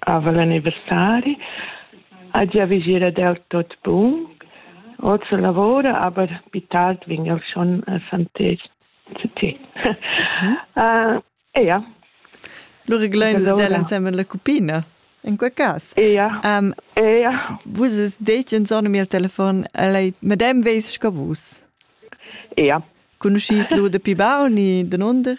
Aval anniversari ha giavischì ed el tut bun. Oz lavura, aber più tard vegn el schon a Santez City. uh, ja. Lu reglein el ensemen la cupina. In quei cas. Ja. Um, ja. Vus detg insomma il telefon, lei madem veis sco vus. Ja. Conoscis lu de pi baun ni de nunder?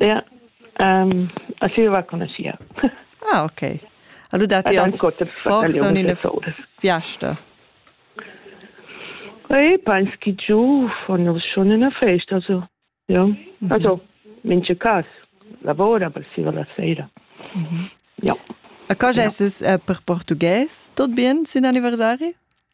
Ja, a Silva conoschia. Ah, okay. Allura ti ans forsa in ina fiasta. Ei, peins chi giu von uns schon in a festa, also, ja. Also, mince cas, lavora per Silva la sera. Ja. A cosa es es per portugues? Tot bien sin anniversari?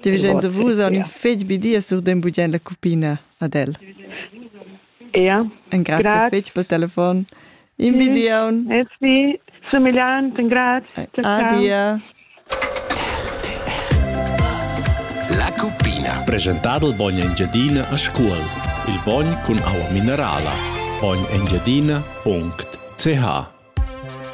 Ti vegin da vus an ün fegl bi di e surdem bugien la cupina ad el. Ia. Engrazia fetg pel telefon. In bi di aun. Es vi. Sumigliant. Grazie. Adia. La cupina. Presentado il bagno Engiadina a scuol. Il bagno con aua minerala. Bagno Engiadina.ch